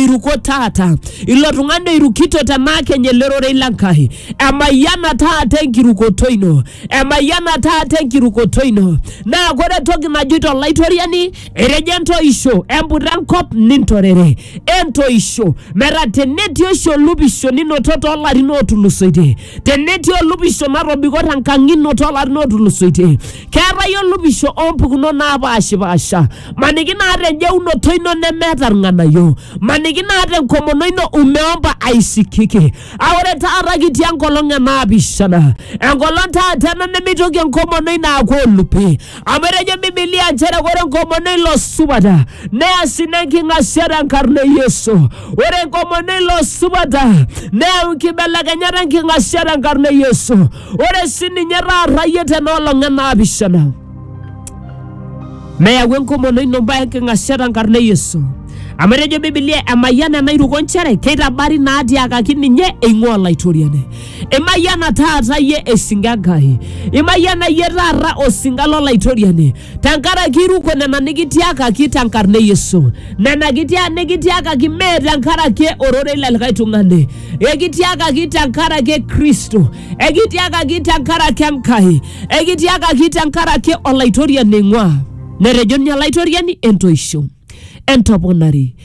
iruko taata ilo tung'ani oirukito te maakeny ele rorei le Nkai emayiana taata enkirukoto ino emayiana taata enkirukoto ino naa kore entoki najoito olaitoriani etejo entoisho emputa enkop nintorere entoisho metaa tenetii oshi olupisho ninoto toolarin ootulusoitie tenetii olupisho natobiko tenkang ino toolarin ootulusoitie keetae olopisho oompukunot naapaashipaasha maniki naata enjeunoto ino nemeeta irng'anayio maniki naata enkomono ino umeomba aisikiki a ore taata kitii enkolong e naapishana enkolong taata ena nemeitoki enkomono ino aaku olupi amu etejo bibilia nchere ore enkomono ilo supata neas ina enking'asia tenkarna e yesu ore enkomono ilo supata neyau nkibelekenyat enking'asia tenkarna e yesu ore sii ninye taata iyie tenoolong enaapishana meyau enkomono ino mbaa enking'asia tenkarna e Yesu amu etejo Biblia emayiana enairuko nchere keitabari naatiakaki ninye eing'ua Olaitoriani. Imayiana taata iyie esinka Enkai, imayiana iyie taata osinka l'Olaitoriani. tenkaraki iruko nena nikitiakaki tenkarna e Yesu. Nena kitia nikitiakaki mee tenkaraki ororei le likae tung'ani. Ekitiakaki tenkaraki e Kristo. Ekitiakaki tenkaraki Enkai. Ekitiakaki tenkaraki Olaitoriani eing'ua. Netejo ninye Olaitoriani entoisho. entoponari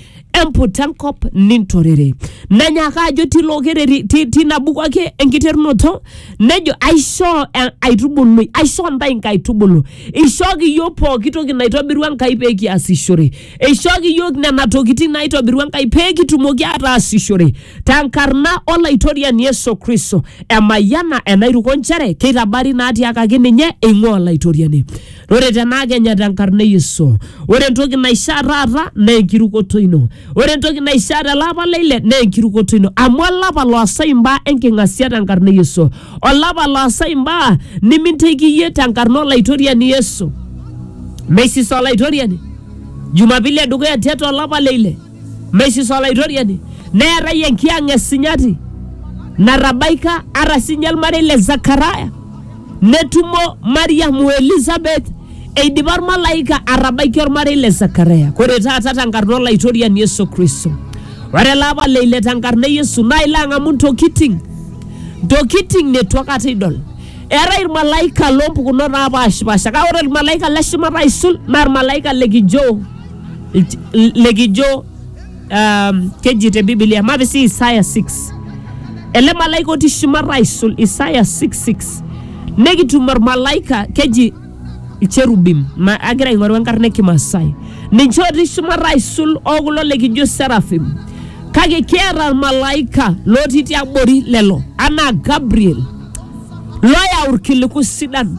emput enkop nintorere nanyaaka ajo tilo kereri ti- tina buku ake enkiterunoto nejo aishoo eh, aitubului aishoo ntae nkaitubulu ishooki yiok pooki toki naitobirua enkai pee kiasishore ishooki yiok nena tokitin naitobirua enkai pee kitumoki ataasishore tenkarna olaitoriani yesu kristo emayiana enairuko nchere keitabari naatiakaki ninye eing'ua olaitoriani Ore tenaa kenya tenkarna e Yesu. Ore entoki naishaa taata naa enkirukoto ino. Ore entoki naishaa tele apa le ile naa enkirukoto ino. Amu olapa loosai imbaa enking'asia tenkarna e Yesu. Olapa loosai imbaa niminteki iyie tenkarna olaitoriani Yesu. Meisisa olaitoriani. Jumapili e dukuya tiatua olapa le ile. Meisis Olaitoriani, neetae enkiyang' e sinyati natabaika ata sinye olmarei le Zakaria, netumo Mariam o Elisabeth eidipa olmalaika atabaiki olmarei le Zakaria. Ore taata tenkarna Olaitoriani Yesu Kristo, ore ele apa le ile tenkarna e Yesu naa ilo ang'amu ntokiting' ntokiting' neitu aikata idol. Eetae ilmalaika loompukunot napaashipaasha kake ore olmalaika le shumata aisul naa olmalaika le kijo likijo um, keji te bibilia mapi sii isaya 6 ele malaika otii shumata aisul isaya 66 nekitum ormalaika keji icherubim ma agira aing'oru enkarna e kimasai ninche otii shumata aisul okulo likijo serafim kake kiata ormalaika lotii tiabori lelo anaa gabriel loyau irkiliku sidan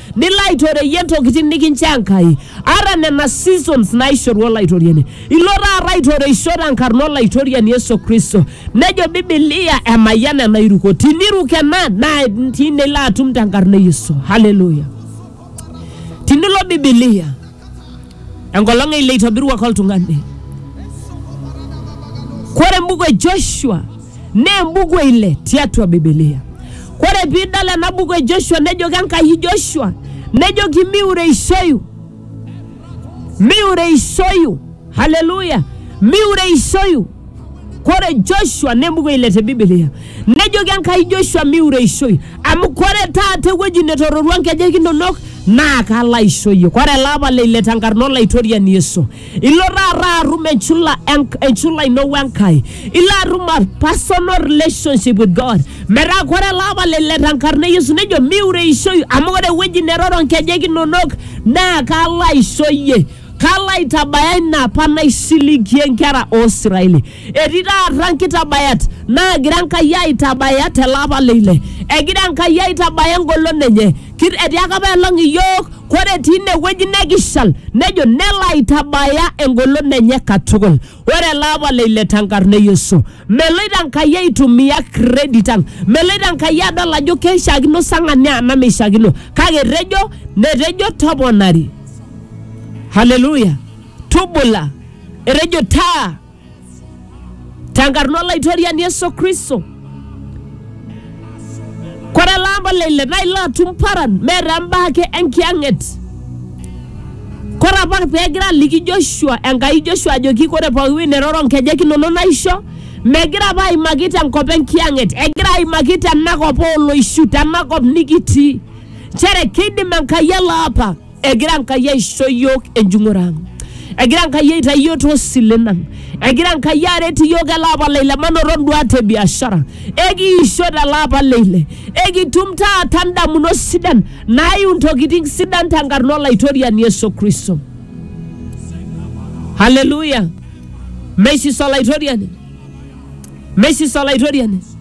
nilo aitoreyie ntokitin nikinchoo Enkai ata nena seasons naishoru Olaitoriani. Ilo taata aitoreisho tenkarna Olaitoriani Yesu Kristo. Nejo Bibilia emayian ena iruko. Tiniruk ena naa tine ilo atum tenkarna e Yesu. Haleluya! Tinilo Bibilia enkolong eile eitobiruaki oltung'ani. Kore embuku e Joshua naa embuku eile tiatua Bibilia. Kore piidol ena buku e Joshua nejoki Enkai Joshua, nejoki miureishoyu, miureishoyu, haleluya, miureishoyu. Kore Joshua nemuko ile te Biblia nejoki Enkai Joshua miureishoi amu kore taata ewueji netororua nkejek inonok naa kalo aisho iyie. Kore ele apa le ile tenkarna Olaitoriani Yesu, ilo taata atum enchula, enk- enchula ino we Enkai, ilo atum a personal relationship with God. Metaa kore ele apa le ile tenkarna e Yesu nejo miureishoi amu ore ewueji neroro nkejek inonok naa kalo aisho iyie. Kalo aitabaya ina apa naisiligie nkera oo Israeli. Etii taata nkitabayat naagira Enkai aitabaya tele apa le ile. Egira Enkai aitabaya engolon enye. Kit- Etiaka apa elong iyiook kore etii ine wueji nekishal nejo nelo aitabaya engolon enye katukul. Ore ele apa le ile tenkarna e Yesu. Meloito Enkai aitumia credit ang. Meloito Enkai adol ajo keishiakino sa ng'ania anaa meishiakino. Kake etejo netejo toponari. haleluya tubula etejo taa tenkarna olaitoriani yesu kristo kore elaamba leile naa ilo atum paran meeta embaa ake enkiyang'et kore apa peegira aliki joshua enkai joshua ajoki kore pooki wueji neroro nkejek inonok naisho megira apa aimaki tenkop enkiyang'et egira aimaki tenakop ooloishu tenakop nikitii nchere keidim Enkai ele apa, egira Enkai aisho iyiook enjung'ore ang', egira Enkai aitayu iyiook too silen ang', egira Enkai aret iyiook ele apa le ile manoto induat e biashara, ekiisho tele apa le ile, ekitum taata indamunot sidan naayiu intokitin sidan tenkarna Olaitoriani Yesu Kristo. Haleluya! Meisis Olaitoriani, meisis Olaitoriani.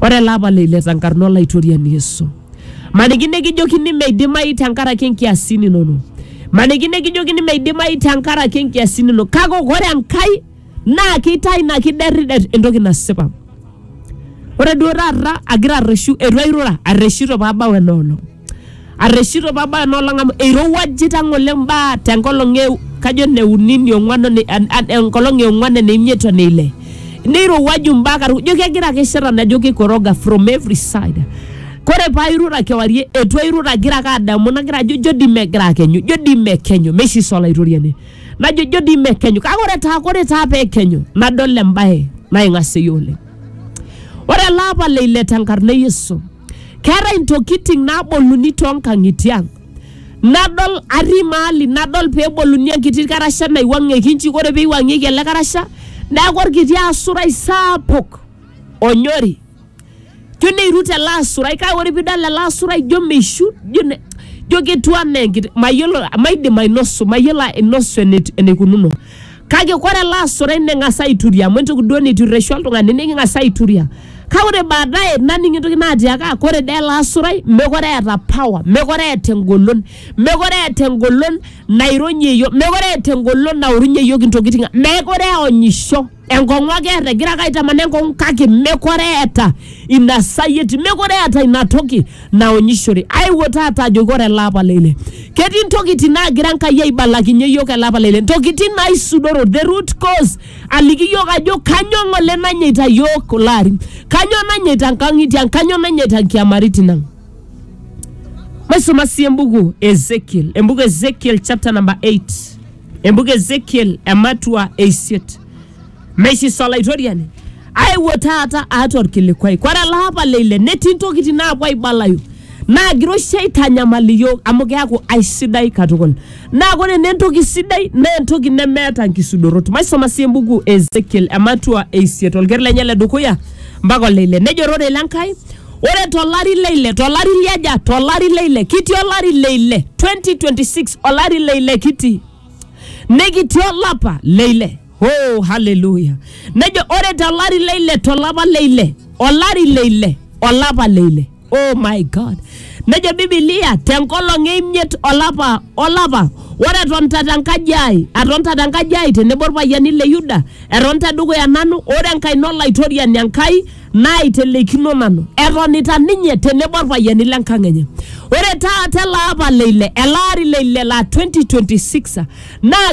Ore ele apa leile tenkarna Olaitoriani Yesu. Maniki nikijokini meidimayu tenkaraki inkiasin inono. Maniki nikijokini meidimayu tenkaraki inkiasin inono. Kake ore Enkai naa keitayu ina kiderrider entoki nasipa. Ore duo taata agira arreshu, eitu airura, arreshito pabau ena olong'. arreshito pabaya nolong amu eirowuajita ng'ole mbaa tenkolong e kajo neuni niong'uan one- an- an- enkolong eong'uan eneimiet oneile neirowuaju mbaa karibu ijo kegira ake shetani ajo keikoroga from every side kore pairura kewarie etu airura agira ake adamu nagira ajo ijo dii megira akenyu ijo dii mekenyu meisisa olaitoriani najo ijo dii mekenyu kake ore taa kore taa pekenyu nadol embae naing'aseyu oleng ore ele apa leile tenkarna e yesu keetae intokiting naboluni toonkang'itie ang nadol atii maali nadol peboluni enkiti karasha naiwuang'ieki inji ore peiwuang'ieki ele karasha neeku orkiti asurai saapuk onyori jo neirut ele asurai kake ore piidol ele asurai jo meishu jo ne- jo ketiu anaa enkiti mayiolo maidim ainosu mayiolo ainosu enet- eneikununo Kake ore ele asurai neng'as aituria amu entoki duo neiturreshu oltung'ani niking'as aituria. Kake ore baadaye naning entoki natiaka ore dee ele asurai mekure eeta power, mekure eeta engolon, mekure eeta engolon naironyie iyiok, mekure eeta engolon naorunye iyiok intokitin ang', mekure eonyisho. Enkong'u ake eeta, egira ake aitamanaa enkong'u kake mekure eeta ina sayiet, mekure eeta ina toki naonyishore. Aewuo taata ajoki ore ele apa le ile. Ketii intokitin naagira Enkai aibalakinye iyiook ele apa le ile, intokitin naisudoro, the root cause, aliki iyiook ajo kanyoo ng'ole nanyaita iyiook kulo arin, kanyoo nanyaita inkang'itie ang, kanyoo nanyaita inkiamaritin ang. Maisuma sii embuku e Ezekiel, embuku e Ezekiel chapter number 8, embuku e Ezekiel ematua e isiet. Meisisa Olaitoriani, aewuo taata aata olkilikwai. Kore ele apa le ile netii ntokitin naapuo aibalayu naagira oshi aitanyamal iyiook amu keaku aisidai katukul. Naa kore naa entoki sidai naa entoki nemeeta nkisudorot. Maisoma sii embuku e Ezekiel ematua e isiet olker lenye le dukuya mpaka ole ile. Nejo ororei le Nkai, ore to lari le ile, to lari le aja? To lari le ile, kitii olari le ile, 2026 olari le ile kitii, nikitii olapa le ile. Oh, haleluya. Nejo ore tolari le ile tolapa le ile olari le ile olapa le ile. Oh my God. Nejo Biblia tenkolong e imiet olapa olapa ore etonta tenkaji ai atonta tenkaji ai tenebo irpayiani le Yuda etonta dukuya nanu ore enkaina olaitoriani Enkai naitelekino nanu etonita ninye tenebo irpayiani le nkang enye. Ore taata ele apa le ile ele ari le ile laa 2026 naa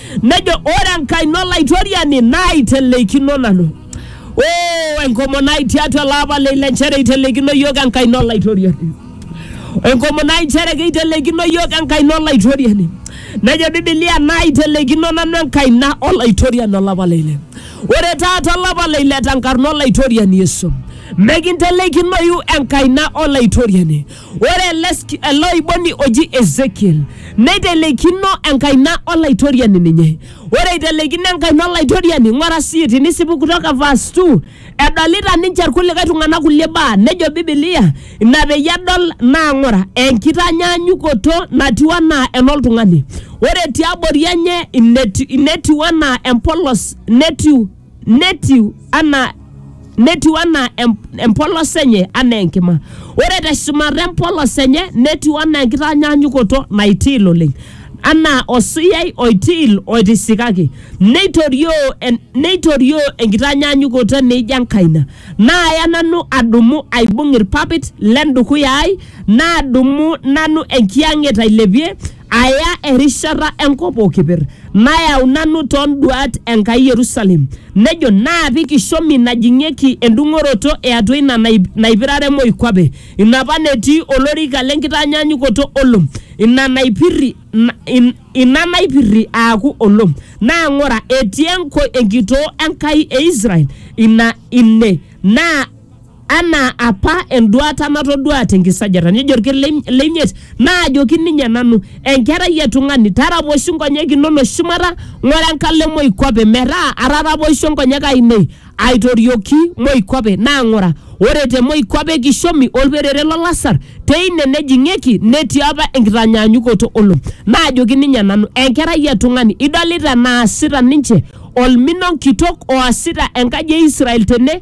Nejo ore enkaina olaitoriani naaiteleikino nanu. Oo enkomono ai tiatua ele apa le ile nchere eiteleikino iyiook enkaina olaitoriani. Enkomono ai nchere keiteleikino iyiook enkaina olaitoriani. Nejo Biblia naaiteleikino nanu enkaina olaitoriani olapa le ile. Ore taata olapa le ile tenkarna olaitoriani Yesu. Mekinteleikinoyu enkaina olaitoriani. Ore ele sk- ele oiboni oji Ezekiel neiteleikino enkaina olaitoriani ninye. Ore eiteleikino enkaina olaitoriani, ng'ora sii tinisipu kutoka verse 2, edolita ninche irkulikae tung'anak kulie baa, nejo Biblia, ina peyie edol naa ng'ora, enkitanyaanyukoto natiu anaa enoltung'ani. Ore tiabori enye inetiu, inetiu anaa empolos, netiu netiu anaa netiu anaa em- empolos enye anaa enkima ore teshumata empolos enye netiu anaa enkitanyanyukoto naitiil oleng anaa osuyai oitiil oitisikaki neitorioo en- neitorioo enkitanyanyukoto neijo enkaina naaya nanu adumu aibung irpapit lendukuya ai nadumu nanu enkiyang'et ailepie aya erishata enkop o keper, nayau nanu too nduaat Enkai Yerusalem, nejo, naapik ishomi najing'ieki endung'oroto e atua ina naipirare moikuape, ina apa netii olorika le nkitanyaanyukoto olom, ina naipirri, ina naipirri aaku olom. Naa ng'ura, etii enkitoo Enkai e Israel ina ine, naa anaa apa enduata natoduaa te nkisajata. Nejo olker le le imiet, naajoki ninye nanu, Enkerai e tung'ani, taraposhi nkonyek inono shumata, ng'ura enkalo e moikuape, metaa ataraposhe nkonyek aainei aitorioki moikuape, naa ng'ura, ore te moikuape e kishomi o lperere lo lasar, teine nejing'ieki, netii apa enkitanyaanyukoto o lom. Naajoki ninye nanu, Enkerai e tung'ani, idolita enaasita ninche olmino kitok oasita enkaji e Israel tene?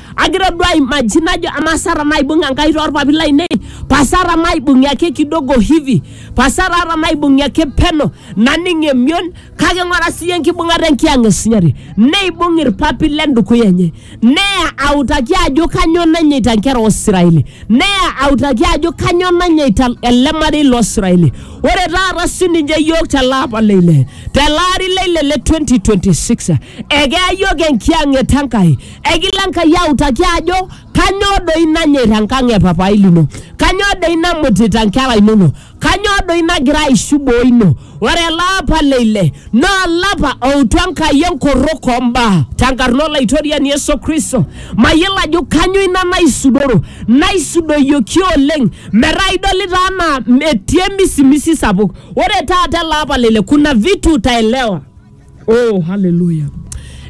agira duo aimaji najo amaa Sara naibung Enkai toorpapit lainei pa Sara maibung'i ake kidogo hivi pa Sara ata maibung'i ake peno naning emion kake ng'ura siyie enkibung'ata enkiyang e Sunyati neibung irpapit le ndukuya enye neya autaki ajo kanyoo nanyaita nkera oo Siraeli neya autaki ajo kanyoo nanyaita ele marei loo Siraeli ore taata sininche iyiook tele apa le ile tele ari le ile le 2026 ekeya iyiook enkiyang'et Enkai Ekilo Enkai autaki ajo kanyoo doi nanyor enkang e papai lino, kanyoo doi namutita nkera inono, kanyoo doi nagira aishu boo ino. Ore ele apa le ile naa olapa outu Enkai enkorrok oo mbaa tenkarna Olaitoriani Yesu Kristo. Mayiolo ajo kanyoo ina naisudoro, naisudoyioki oleng metaa idolita anaa etii emisimisi sapuk. Ore taata ele apa le ile kuna vitu utaelewa. oh haleluya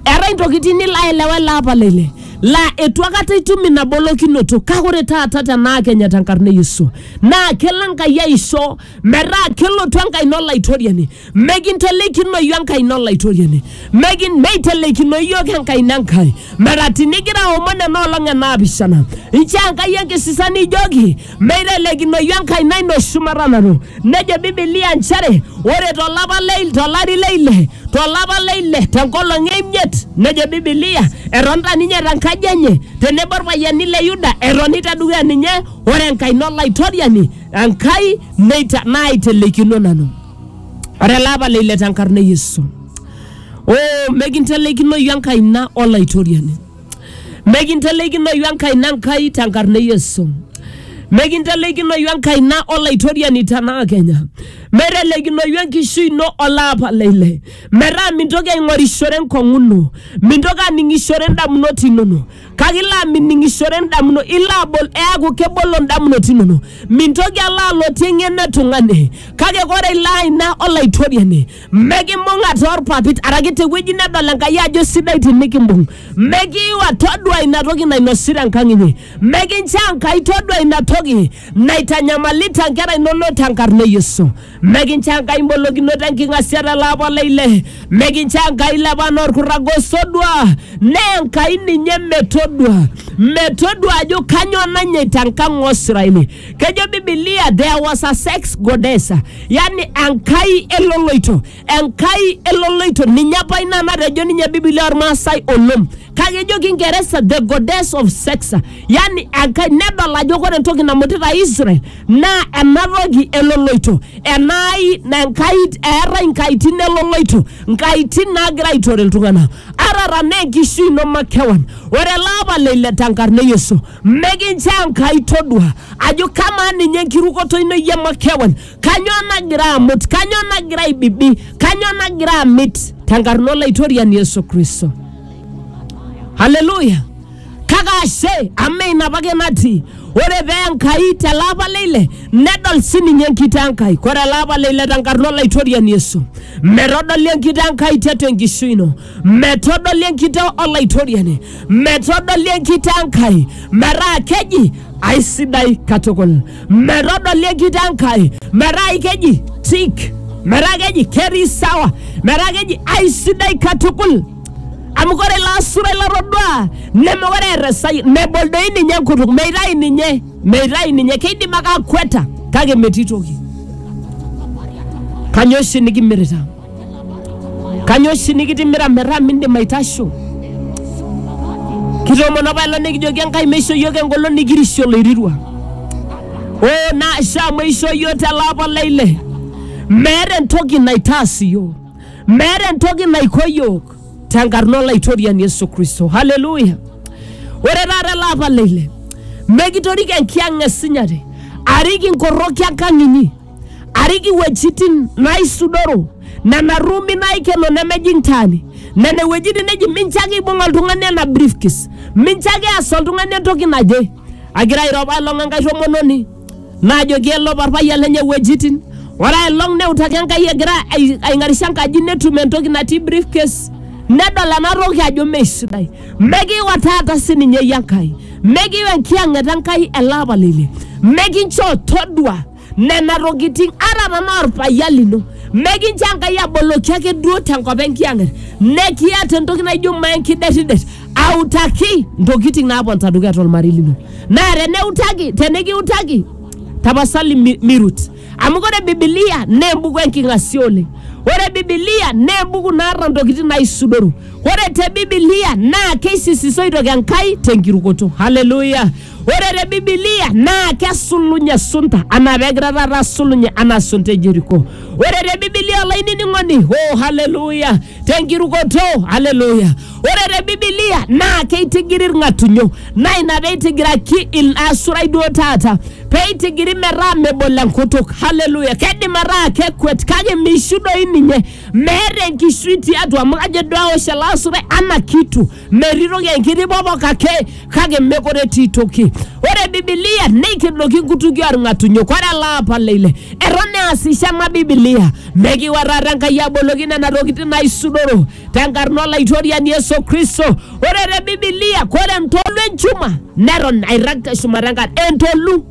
eetae intokitin nilo aelewa ele apa lele laa etu akata itum ina bolokinoto kake ore taata tenaa kenya tenkarna e yesu naa kelo enkai aisho metaa kelotu enkaina olaitoriani mekintelikinoyu enkaina olaitoriani Mekin- meiteleikinoyu iyiok enkaina enkai metaa tinigira aomon ena olong enaapishana inchoo enkai enkisisa nijoki Meitelekinoyu enkaina ino shumata nanu. Nejo Bibilia nchere ore to lapa le to lari le ile, to lapa le ile te nkolong e imiet, nejo Bibilia etonita ninye te nkaji enye tenebo ilpayiani le Yuda etoni te dukuya ninye, ore enkaina Olaitoriani Enkai neita naaitelekino nanu. Ore ele apa le ile te nkarna e Yesu. Oh, mekintelekinoyu enkaina Olaitoriani. Mekinteleikinoyu enkaina Enkai te nkarna e Yesu. Mekinteleikinoyu enkaina Olaitoriani tenaa kenya. Meteleikinoyu enkishui ino olaapa le ile. Metaa mintoki aing'orishore enkong'u ino, mintoki aning'ishore indamunot inono, kake ilo amining'ishore indamunot, ilo abol, eaku kebolo indamunot inono. Mintoki alo alotie eng'eno e tung'ani, kake kore ilo aina Olaitoriani. mekimbung'a toorpapit araki tewueji nedol enkai ajo sidai tinikimbung mekiiwa todua ina toki nainosita enkang inyi mekincho enkai todua ina toki naitanyamalita nkera inonok tenkarna e yesu mekincho enkai imbolokinoto enking'asia tele apa oleile mekincho enkai lepana orkurrag osodua naa enkai ninye metodua metodua ajo kanyoo nanyaita enkang osiraini Kejo Bibilia there was a sex goddess, yani enkai eloloito, enkai eloloito. Ninye apa ina natejo ninye Bibilia ormaasai olom. Kake ejo Kingeresa the goddess of sex, yani enkai nedol ajo kore entoki namutita Israel naa ena toki eloloito, enai na enkai eetae nkaitin eloloito, nkaitin naagira aitore iltung'anak. Arara naa enkishui ino makewan. Ore ele apa le ile tenkarna e Yesu. Mikincho Enkai todua ajo kamaa ninye enkirukoto ino iyie makewan, kanyoo nagira amut, kanyoo nagira aibibi, kanyoo nagira amit tenkarna Olaitoriani Yesu Kristo. Haleluya! Kake ashe amu ina apake natii. Ore pee Enkai tele apa le ile nedol sininye enkito Enkai. Ore ele apa le ile tenkarna Olaitoriani Yesu metodoli enkito Enkai tiatua enkishui ino. metodoli enkitoo olaitoriani metodoli enkitoo enkai metaa keji aisidai katukul metodoli enkitoo enkai metaa keji tik metaa keji ketii sawa metaa keji aisidai katukul amu kore ilo asurai latoduaa nemekore eeta esai mebol doi ninye enkutuk meitayu ninye meitayu ninye keidim ake akweta kake metii toki kanyoo oshi nikimirita Kanyoo oshi nikitimira metaa mindim aitasho? Kitoomono apa ilo nikijoki Enkai meisho iyiook engolon nikirishe oloirirua. Oo naashe amu eishoo iyiook te lapa le ile. Meeta entoki naitaas iyiook. Meeta entoki naiko iyiook tenkarna olaitoriani Yesu Kristo. Haleluya! Ore taata ele apa le ile mekitoriko enkiyang' e sinyati arik inkoroki enkang' inyi. arik iwuejitin naaisudoro, nena ruumi naaikeno nemejing taani, nena iwuejitin neji mincho ake eibung oltung'ani ena briefcase, mincho ake eas oltung'ani entoki naje. Agira airo apailong enkae tomononi naajoki elop orpayian lenye iwuejitin, ore aelong neutaki Enkai egira ai- aing'arisho enkaji netum entoki natii briefcase, nedol ena toki ajo mee sidai. Mekiwa taata sininye iyie Enkai, mekiwa enkiyang'et Enkai ele apa lile, mekinchoo todua nena tokitin ata tenaa orpayian lino, mekincho Enkai aboloki ake duo tenkop enkiyang'et, nekiata entoki naijo maa enkiderridet autaki ntokitin naaponita dukuya tolmarei lino. Naa teneutaki, tenikiutaki tapasali mi- mirut. amu ore bibilia naa embuku enking'asia oleng ore bibilia naa embuku naata ntokitin naisudoru ore te bibilia naa keisisisoi toki enkai tenkirukoto haleluya ore te bibilia naa kesulunye sunta anaa pegira taata asulunye anaa sunta e jeriko ore te bibilia olainining'oni oh haleluya tenkirukoto haleluya Ore te Bibilia naa keitigiri ilng'atunyo naa ina pee eitigiraki ilasurai duo taata pee eitigiri metaa mebol enkutuk. Haleluya! Keidim ataa kekwet kake meishu doi ninye, meeta enkishui tiatua amu kajo duo aosh ele asurai ana kitu, metii toki enkiti popok ake kake mekure etii toki. Ore Bibilia neikidoki nkutukie olng'atunyo. Ore ele apa le ile eton easisho ena Bibilia, mekiuarrata Enkai aboloki nena tokitin naaisudoro tenkarna olaitoriani Yesu Kristo. Ore te Bibilia, ore entolu enchuma neton airrag te shumata enkare. Entolu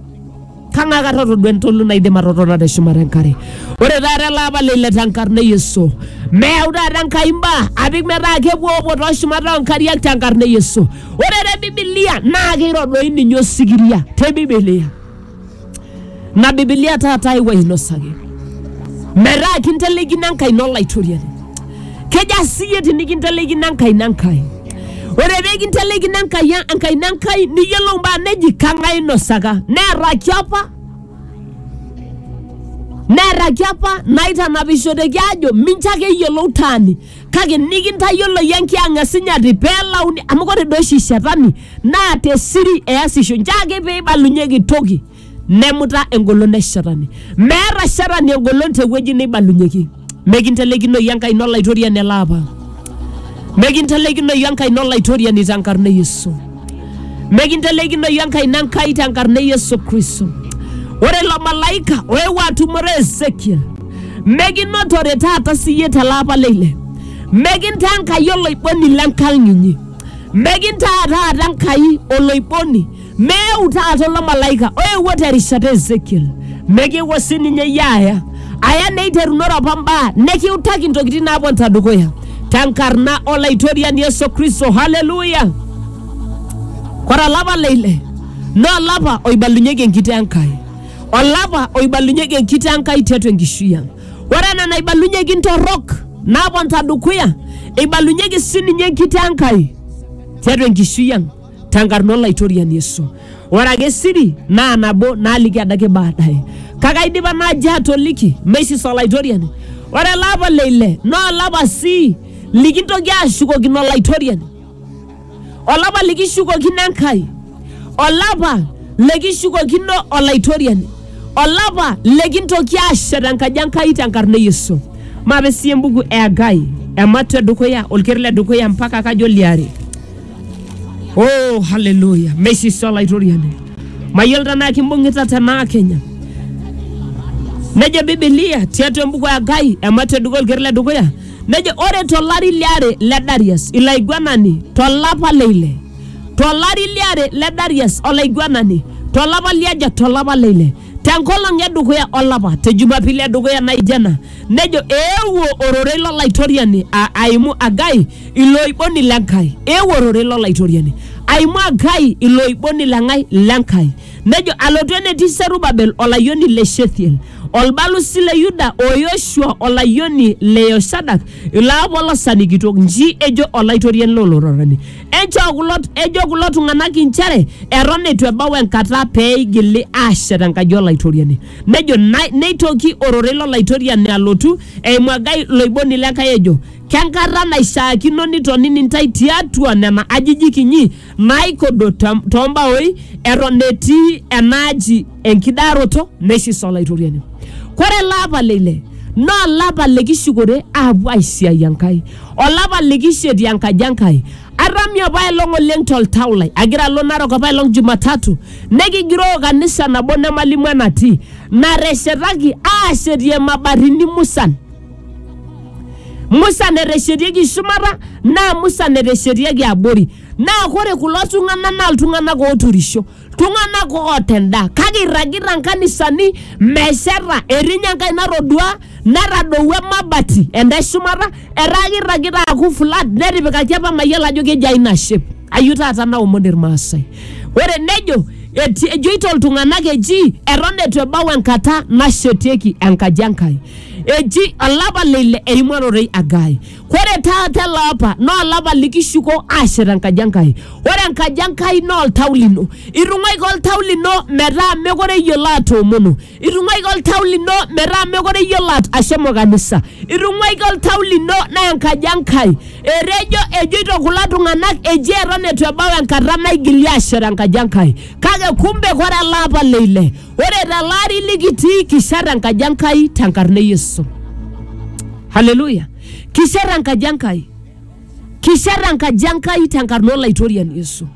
kang'ae kata otodua entolu naidim atotona te shumata enkare. Ore taata ele apa leile tenkarna e Yesu, meyau taata Enkai imbaa apik metaa kepuopuo too shumata oo nkariak tenkarna e Yesu. Ore te Bibilia naa keiro doi ninye osikiria te Bibilia. na bibilia taata aewuo ainosaki metaa kinteleikino enkai ino olaitoriani keja siyie tinikinteleikino enkai ino enkai ore pee kinteleikino enkai enkai ino enkai niyiolou mbaa neji kang'ae inosaka neeraki apa neeraki apa naitanapishoteki aajo mincho ake eyiolou taani kake nikintayioloyie enkiang e sinyati pelauni amu kore doi oshi shetani naa te siri easisho nche ake peibalunyeki toki nemuta engolon e shetani meeta shetani engolon tewueji neibalunyeki mekintelekinoyu enkaina olaitoriani ele apa mekintelekinoyu enkaina olaitoriani tenkarna e yesu mekintelekinoyu enkaina enkai tenkarna e yesu kristo ore ilo malaika oewuo atumore ezekiel mekinotore taata siyie tele apa le ile mekintaa enkai oloiboni lenkang inyi mekintaa taata enkai oloiboni meeu taata ilo malaika oewuo terishata ezekiel mekiwuo sininye iyie aya aya neiterunore apa mbaa nekiutaki intokitin naaponita dukuya tenkarna olaitoriani yesu kristo haleluya kore olapa le ile naa olapa oibalunyeki enkitoo enkai olapa oibalunyeki enkiti Enkai tiatua enkishui ang. Ore ena naibalunyeki ntorrok naaponita dukuya, eibalunyeki sininye enkiti Enkai tiatua enkishui ang tenkarna Olaitoriani Yesu. Ore ake siri naa nabo naaliki adake baadaye. Kake aidipa naaji atoliki meisis Olaitoriani. Ore ele apa le ile naa olapa sii likintoki aashukokino Olaitoriani. olapa likishukokino Enkai, olapa likishukokino Olaitoriani, olapa likintoki aashet enkaji Enkai tenkarna e Yesu. Maape sii embuku e Hagai, ematua e dukuya, olker le dukuya mpaka kajo liare. Oh, haleluya! Meisisi Olaitoriani. Mayiolo tenaa kimbung'ita tenaa Kenya. Nejo Bibilia tiatua embuku e Hagai, ematua e dukuya, olker le dukuya, Nejo ore tolari liare le Darius ilaiguanani tolapa leile tolari liare le Darius olaiguanani tolapa liaja tolapa leile tenkolong e dukuya olapa te Jumapili e dukuya naijo ena nejo eewuo ororei lo Laitoriani a- aimu Agai iloiboni le Nkai eewuo ororei lo Laitoriani aimu Agai iloiboni le ng'ai le Nkai Nejo, Alotu enetii Serubabel olayioni le Shethiel, olbalusi le Yuda, o Yoshua olayioni le Yoshadak, ilaapolosani kitok, nji ejo Olaitoriani loo lororani, enchoo kulo, ejo kulo tung'anak inchere eton eitu ebau enkata pee eigili aashet enkaji Olaitoriani. Nejo, "Nai- neitoki ororei lo Laitoriani alotu eimu Hagai iloiboni le Enkai ejo, Kenkata naishaakino nitonini intae tiatua nena ajijik inyi naaikodo too mbaoi eton etii enaaji enkidaroto neisisa Olaitoriani. Kore ele apa le ile naa olapa likishukore aapuo aisiai Enkai, olapa likishetie enkaji Enkai. Atami apaelong oleng toltau lai agira alo Narok apaelong Jumatatu nekigiroo kanisa nabo nemalimu enatii nateshetaki aashetie mabatini musan. Musa neteshetieki shumata naa Musa neteshetieki abori. Naa ore kulo tung'anak naa iltung'anak ooturisho, iltung'anak oota endaa kake eirragita nkanisani mesheta. Etii ninye enkae natodua natadouo emabati enda e shumata etaa keirragita aaku flat netipikaki apa mayiolo ajo kejia ina shape. Ayeu taata naomon ilmaasai. Ore nejo ejoito iltung'anak eji eton eitu ebau enkata nashetieki enkaji e Nkai. Eji olapa le ile eimarorei Agai. Ore taata ele apa naa olapa likishuko aashet enkaji Enkai. Ore enkaji Enkai naa oltau lino. Itung'uaika oltau lino metaa mekure iyiolo atoomono. Itung'uaika oltau lino metaa mekure iyiolo at- ashomo kanisa. Itung'uaika oltau lino naa enkaji Enkai. Etejo ejoito kulo tung'anak eji eton eitu ebau enkata naigili aashet enkaji Enkai. Kake kumbe ore ele apa le ile Ore tele ari likitii kishat enkaji Enkai tenkarna e Yesu. Haleluya! Kishat enkaji Enkai. Kishat enkaji Enkai tenkarna Olaitoriani Yesu.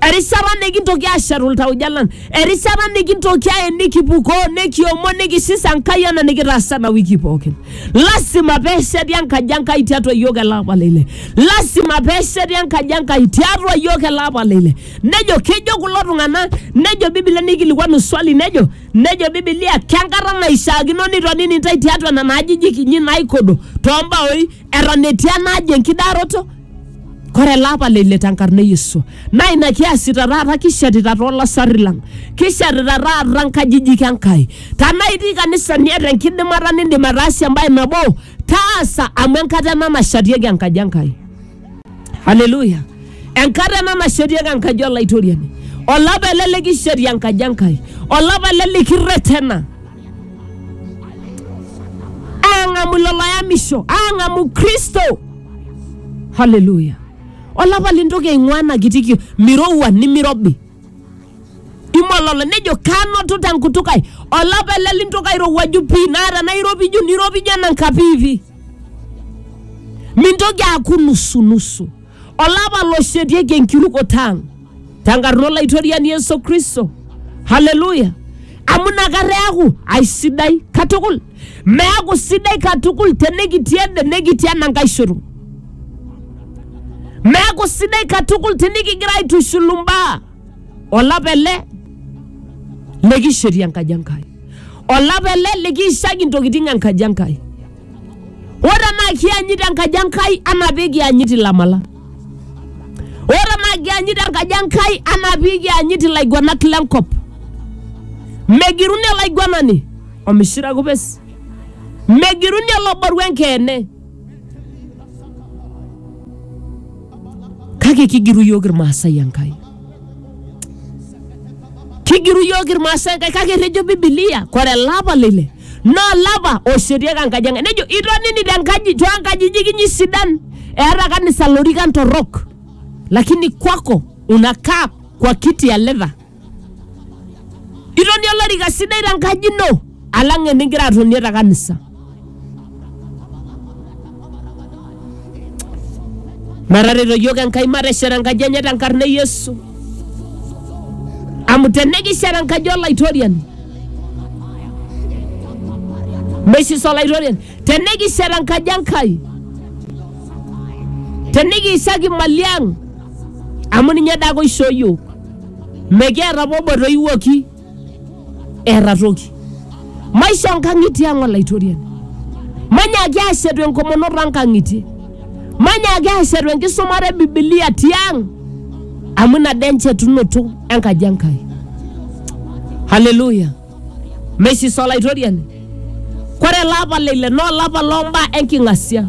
Erishata nikintoki aashetu iltauja lang, erishata nikintoki aye nikipukoo, nikiomon, nikisisa Enkai ena nikitaasa ena wiki pookin. Lasima peesheti enkaji Enkai tiatua iyiook ele apa le ile. Lasima peesheti enkaji Enkai tiatua iyiook ele apa le ile. nejo kejo kulo tung'anak nejo bibilia neikilikuanu swali nejo nejo bibilia kenkata naishaakino nitonini intae tiatua nena ajijik inyi naikodo toombaoi eton etii ena aji enkidaroto kore ele apa leile tenkarna e yesu naa ina kiasita taata kishetita toolasarri lang kishetita taata nkajijik enkai tanaa itii kanisa niata enkidimata nindim ataasie embae nabo taasa amu enkata ena nashatieki enkaji enkai Haleluya. Enkata ena nashetieki enkaji olaitoriani. Olapa ele likisheti enkaji Enkai. Olapa ele likirretena. Aang'amu ilo loyamisho. Aang'amu Kristo. Haleluya. Olapa lintoki aing'ua ena kiti kio. Mirowua nimirobi. Imololo nejo kanoto tenkutuk ai. Olapa ele lintoki airowuaju pii naa tenairopiju niropiju enanka piipi. mintoki aaku nusunusu olapa loshetieki enkirukoto ang tenkarna olaitoriani yesu kristo haleluya amu inakata eaku aisidai katukul meaku sidai katukul tenikitii ende nekitii enankae shoto meaku sidai katukul tinikigira aitushulu mbaa olapa ele likishetie enkaji Enkai, olapa ele likiishaki intokitin enkaji Enkai. Ore tenaa kianyit enkaji Enkai anaa pee kianyit ilamala, ore tenaa kianyit enkaji Enkai anaa pee kianyit ilaiguanak lenkop, megiruni olaiguanani omishira kupes, megiruni oloboru enkeene. kake kigiru iyiook irmaasai enkai kigiru iyiook irmaasai enkai kake etejo bibilia kore elapa lile naa olapa oshetieki enkaji enkai nejo itonini tenkaji toonkajijik inyi sidan eeta kanisa lorikan torrok lakini kwako unakaa kwa kiti ya leather Itonie olorika sidai te nkaji ino alang enigira atonie te kanisa. Metareto iyiook Enkai mateshet enkaji enye te nkarna e Yesu. Amu tenikishet enkaji olaitoriani meisisa olaitoriani tenikishet enkaji Enkai tenikiishaki imali ang amu ninye dake oishoo iyiook. mekiata apa obo etoiwuoki eeta toki maisho nkang'itie ang olaitoriani manyaki aashetu enkomono too nkang'itie manyaki aashetu enkisumata e bibilia tiang amu ina dee enchetunoto enkaji enkai haleluya Meisisa Olaitoriani. Kore ele apa le ile naa olapa loo mbaa enking'asia.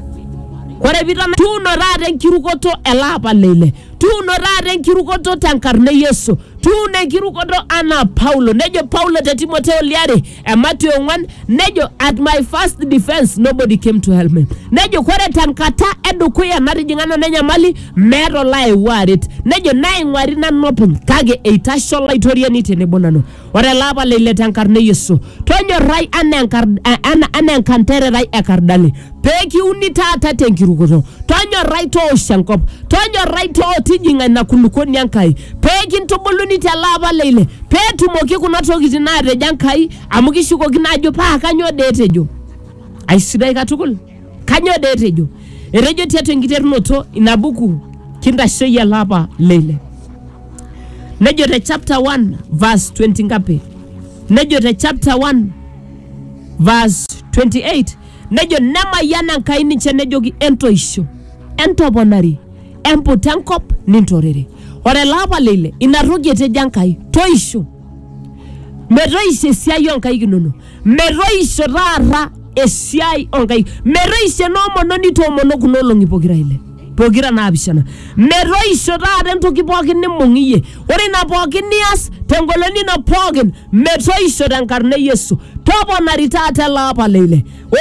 Kore piitana tuuno taata enkirukoto ele apa le ile. Tuuno taata enkirukoto tenkarna e Yesu. Tuuno enkirukoto anaa Paulo. Nejo Paulo te Timoteo liare emati ong'wan nejo at my first defense nobody came to help me. Nejo kore tenkata edukuya natijing'a nanu enyamali meeta olaewuo aret. Nejo naing'uari nanu openy kake eitasho Olaitoriani tenebo nanu. Ore ele apa leile te nkarna e Yesu, tonyorrai anaa enkar- eh, ana- anaa enkantererai e kardali, pee kiuni taata te nkirukoto. Tonyorrai toosh enkop, tonyorrai too tijing'a ina kulukoni e Nkai, pee kintubuluni tele apa leile, pee etumoki kuna tokitin naatejo Enkai, amu kishukokino aajo paa kanyoo dee etejo. Aisidai katukul. Kanyoo dee etejo? Etejo tiatua enkiterunoto ina buku kintashoyie ele apa leile. Nejo te chapter 1 verse 20 ngapi? Nejo te chapter 1 verse 28 nejo nemayiana Enkai ninche nejoki entoisho, entoponari, emput enkop nintorere. Ore ele apa leile ina toki etejo Enkai toisho metoisho esiai oo nkaik inonok. metoisho taata esiai onkai metoisho enoomononi toomono kuna olong'i pokira ile pokira naapishana metoisho taata entoki pookin nimbung iyie ore ina pookin nias tengolon ino pookin metoisho tenkarna e yesu toponari taata ele apa leile o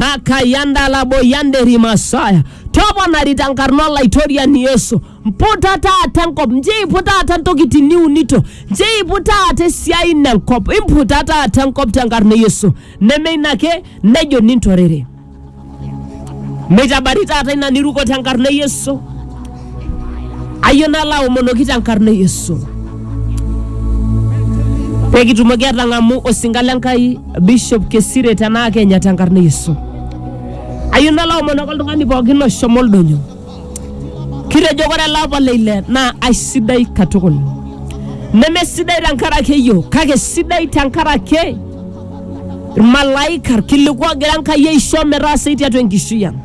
rakayandalaboyanderimasaya toponari tenkarna olaitoriani yesu mputa taata nkop njiipu taata ntokitin niunito njiipu taata esiai ino enkop imputa taata enkop tenkarna e yesu neme ina ake nejo nintorere meitabari taata ina niruko tenkarna e yesu ayie nalo aomonoki tenkarna e yesu pekitumoki atang'amu osinka le nkai bishop kesire tenaa kenya tenkarna e yesu ayieu nalo aomonoki oltung'ani pookin oshomo oldonyo Kitejo ore ele apa le ile naa aisidai katukul, nemesidai tenkaraki eyiok kake sidai tenkaraki irmalaika irkiliku ogira Enkai aisho metaasai tiatua enkishui ang.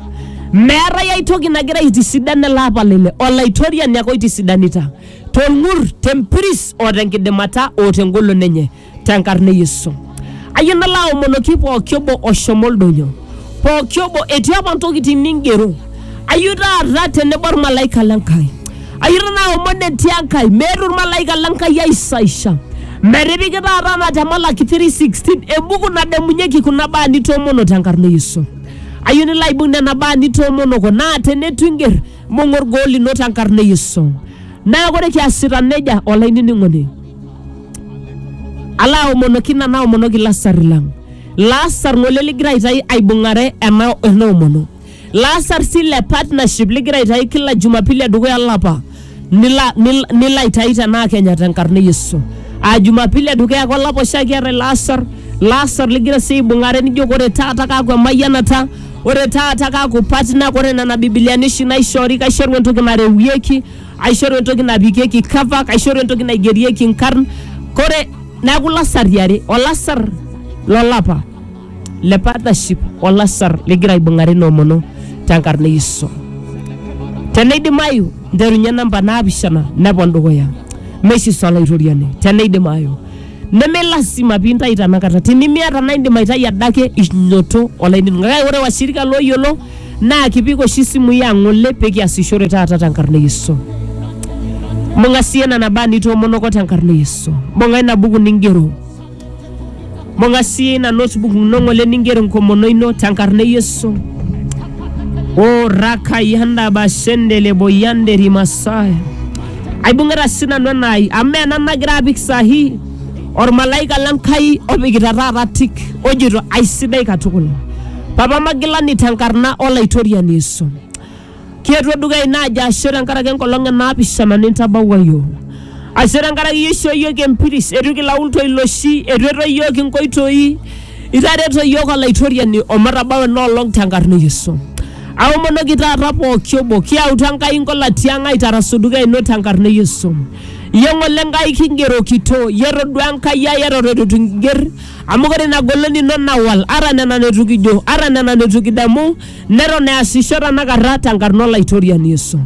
Meetae ai toki nagira aitisidan ele apa le ile, Olaitoriani ake oitisidanita tolng'ur, tempiris o tenkidimata o tengolon enye. tenkarna e Yesu. Ayie nalo aomonoki pooki obo oshomo oldonyo, pooki obo etii apa ntokitin ningero. Ayie taata tenebo olmalaika le Nkai. Ayie taata aomon etii Enkai, meeta olmalaika le Nkai aisaisha. Metipiki taata ena te Malaki 3:16 embuku nadamunyeki kuna baa nitoomono tenkarna e Yesu. Ayie nilo aibung nena baa nitoomonoko naa teneitu inger mbung'a olgoo lino tenkarna e Yesu. Neeku ore kiasita nejia olainining'oni Ala aomonoki ina naomonoki lasar lang. Lasar ng'ole ligira aitayu aibung'are ena ena omono. Lasar sii le partnership ligira aitayu kila Jumapili edukuya olapa nila nil- nilo aitayu tenaa Kenya tenkarna e Yesu. Aa Jumapili edukuya ake olapa oshiake eetae lasar, lasar ligira sii aibung'are nijo ore taata kaaku emayianata, ore taata kaaku partner, ore nena bibiliani oshi naishoori kaishoru entoki narewieki aishoru entoki napikieki cover kaishoru entoki naigerieki nkarn kore neaku lasari are olasar lolapa le partnership olasar ligira aibung'are noomono tenkarna e yesu teneidimayu nterunye namba naapishana nepon dukuya meisisa olaitoriani teneidimayu neme lasima piintai tenakata tinimiata naa indim aitai adake inyoto olainining'oni kake ore washirika looyiolo naa kipik oshi isimui ang ng'ole pee kiasishore taata tenkarna e Yesu. Mbung'a sii ena nabaa nitoomonoko tenkarna e Yesu. Mbung'a ina buku ningero. Mbung'a sii ina notebook ino ng'ole ningero enkomono ino tenkarna e Yesu. O rakayanda bashendele boyande rimasaya. Aibung'ita sii nanu enaai amu mee ena nagira apik sahi ormalaika le Nkai opikita taata tik ojito aisidai katukul. Papa magilani tenkarna olaitoriani Yesu. Kietuo dukuya ina aji ashe tenkaraki enkolong e naapishana nintabawua iyiook. Ashe tenkaraki iyie ishoo iyiook empiris, eitu kilaul toiloshi, eitu etoyu iyiook inkoitoi, itareto iyiook olaitoriani omatabau ena olong tenkarna e Yesu. Aomonoki taata pooki obo, kiyautu Enkai inkolatia ang aitarasu dukuya ino tenkarna e Yesu. Iyie ng'ole Enkai kingerokito, iyie etodua Enkai ai eton eitu kinger, Amu ore ina golon ino nawal, ata nena neitu kijo, ata nena neitu kidamu, neton easisho tenakata tenkarna Olaitoriani Yesu.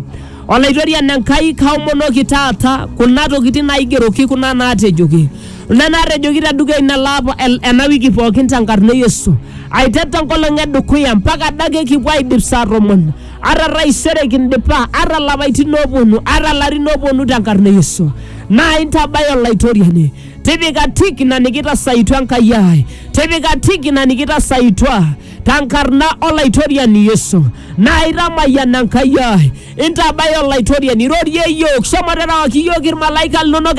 Olaitoriani Enkai, kaomonoki taata kuna tokitin naaigeroki, kuna naatejoki, kuna naatejoki te dukuya ina laapa ena wiki pookin tenkarna e Yesu. Aiteru te nkolong e dukuya mpaka adake kipuo aaidip saa tomon, ata taisere kindipa, ata lapaitin ooponu, ata larin ooponu tenkarna e Yesu. Naa intabaya Olaitoriani. tipika tik ina nikitasaitua enkai ai tipika tik ina nikitasaitua tenkarna olaitoriani yesu naa itamayian enkai ai intabaya olaitoriani irorie iyiook shomo terewaki iyiook irmalaika linonok